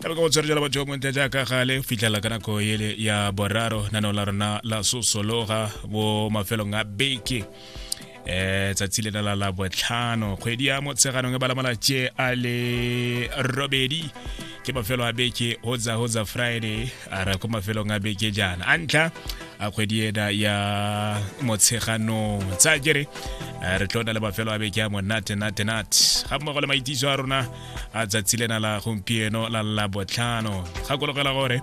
ka baka botswerere la batho montle jaaka gale fitlhela ka nako ele ya boraro naneo la rona la sosologa bo mafelong a beke eh tsatsi le la la botlhano kgwedi ya motsheganong e balamala tše a le robedi ke mafelo a beke hotsa hotsa friday a ra ko mafelong a beke jaana a ntlha a kgwedi ena ya motsheganong tsa kere re tlo na le mafelo a beke a monate nate nate ga mmogo le maitiso a rona a tsatsi lena la gompieno la la botlhano gakologela gore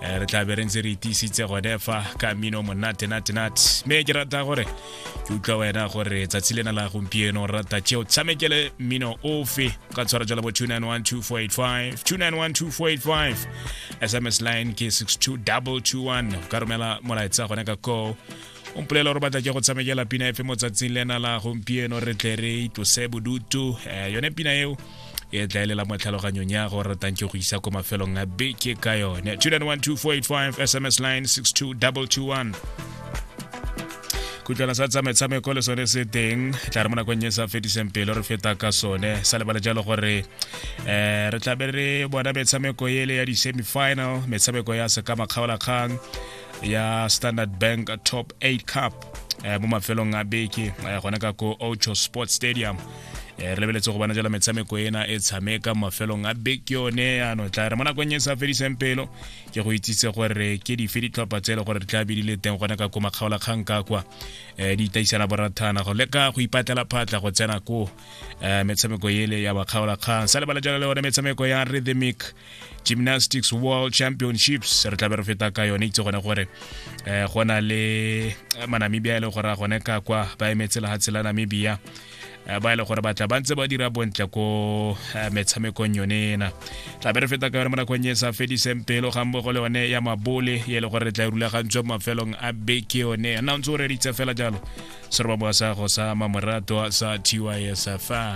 eh, re tla be re ntse re itiisitse gone fa ka mino monate nate nate mme ke rata gore ke utlwa wena gore tsatsi lena la gompieno rata tšeo tshamekele mmino ofe ka tshwara jala bo 2912485 2912485 sms line ke 62221 ka romela molaetsa gone ka koo o mpolela gore batla ke go tshamekela pina efe motsatsing le ena la gompieno re tle re itlose bodutu um yone pina eo e tlaelela mo tlhaloganyong ya go ratang ke go isa ko mafelong a beke ka yone 2912485 sms line 62221 kutlwana sa tsa metshameko le sone se teng tla re mo nakong e sa fetiseng pele re feta ka sone sa lebale jalo gore um re tlabe re bona metshameko ele ya di-semifinal metshameko ya sekama kgaolakgang ya standard bank top 8 cup eh, mo mafelong a beke eh, gone ka ko ocho sports stadium eh, re lebeletse go bona jala metshameko ena e tshameka mafelong a beke yone ano tla re mo nakong e sa fediseng pelo ke go itsise gore ke dife ditlhopha tse e le gore re tla bidile teng gone ka ko makgaolakgang ka kwa um di itaisana borathana go leka go ipatlela phatla go tsena ko um metshameko ele ya bakgaolakgang sa lebala jalo le one metshameko ya rhythmic gymnastics world championships re tlabe re feta ka yone itse gone gore um go na le manamibia e le gore a gone ka kwa ba emetse lehatshe la namibia Eh, ba e le gore batla ba ntse ba dira bontle ko eh, metshamekong yone ena tla be re feta ka yone mo nakong e sa fediseng pelo ga mmogo le yone ya mabole e le gore re tla e rulagantswe mo mafelong a beke yone nna o ntse o reditse fela jalo seroba moasago sa mamorato sa tysfa